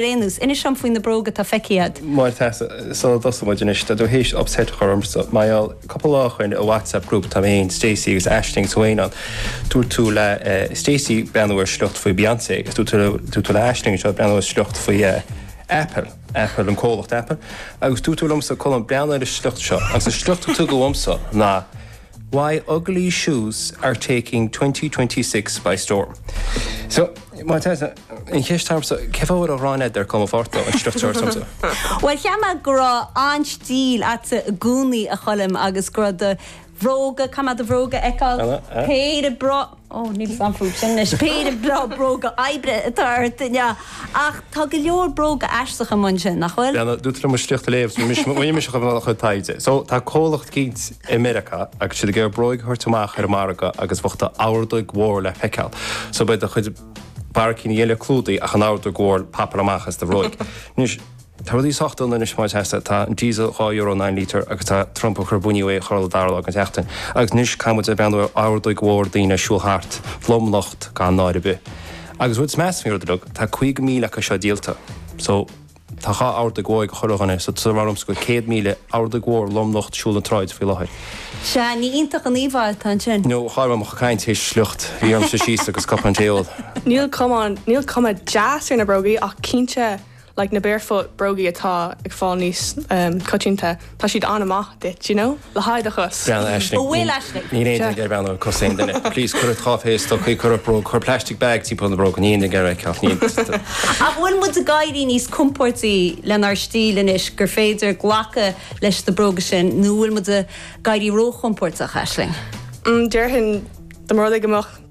Anois, Inis dom faoi na bróga atá feicthe agat. Máire Treasa. Sula dtosóidh muid anois, tá tú théis upset a chur ormsa. Mar gheall, cúpla lá ó shoin i WhatsApp group tá mé fhéin, Stacey agus Aisling agus Wayne ann. Dúirt tú le Stacey breathnú ar sliocht faoi Beyonce agus dúirt tú dúirt tú le Aisling anseo breathnú ar sliocht faoi Apple, Apple, an comhlacht Apple. Agus dúirt tú liomsa, Colm, breathnaigh ar an sliocht seo. Agus an sliocht a tugadh dhomsa ná. Why ugly shoes are taking 2026 by storm. So, má tá an cheist agamsa, cén fáth a bhfuil an ghráin eadair cuma forta an structure agamsa? Bhuel, cheap mé go raibh an-stíl agatsa i gcónaí, a Choilm, agus go raibh do bhróga, caithfidh mé do bhróga a fheiceáil? Péire bróga. Ó, níl 's a'm faoi sin anois. Péire breá bróga oibre atá ort, an ea? Ach tá go leor bróga aisteacha amuigh ansin, nach bhfuil? Bheannaigh tú trína mo shliocht a léamh. Thosaigh mise ag déanamh mo chuid taighde. So, tá comhlacht eicínt i Meiriceá agus siad ag iarraidh bróig a thabhairt amach ar an margadh agus bheadh d'ordóig mhór le feiceáil. So beidh do chuid barraicíní eile clúdaithe ach an ordóig mhór, ag popáil amach as do bhróig. Anois. Tá rudaí sách dona anois Máire Treasa. Tá an diesel dhá euro an lítear agus tá Trump ag cur buinní orm chuile dara lá den tseachtain. Agus anois caithfimid a bheith ag breathnú ar ordóig mhór daoine ag siúl thart, lomnocht gan náire ar bith. Agus an rud is measa faoin rud uilig, tá 50,000 acu seo díolta. So, tá dhá ordóig mhór ag chuile dhuine. So, tá ormsa go bhfuil 100,000 ordóig mhór lomnocht ag siúl na sráide faoi láthair. Sea, nach iontach an íomhá atá ansin. No, char mhaith liom caint théis sliocht. Bhí orm suí síos agus cupán tae a ól. Níl cuma deas ar na brógaí ach cinnte like na barefoot brógaí atá ag fáil níos coitianta tá siad an-maith duit d'you know le haghaidh do chos. Brón orm Aisling. An bhfuil Aisling? Níl aon duine ag iarraidh breathnú ar chos aon duine. Please cuir ort dhá phéire stocaí, cuir ort bróg, cuir plastic bag timpeall na bróg, níl aon duine ag iarraidh é. Ceart, ach an bhfuil muid ag éirí níos compóirtí lenár stíl anois gur féidir glacadh leis na bróga sin nó an bhfuil muid ag éirí ró-chompóirteach, Aisling? Mm déarfainn dá mba rud é go mbeadh.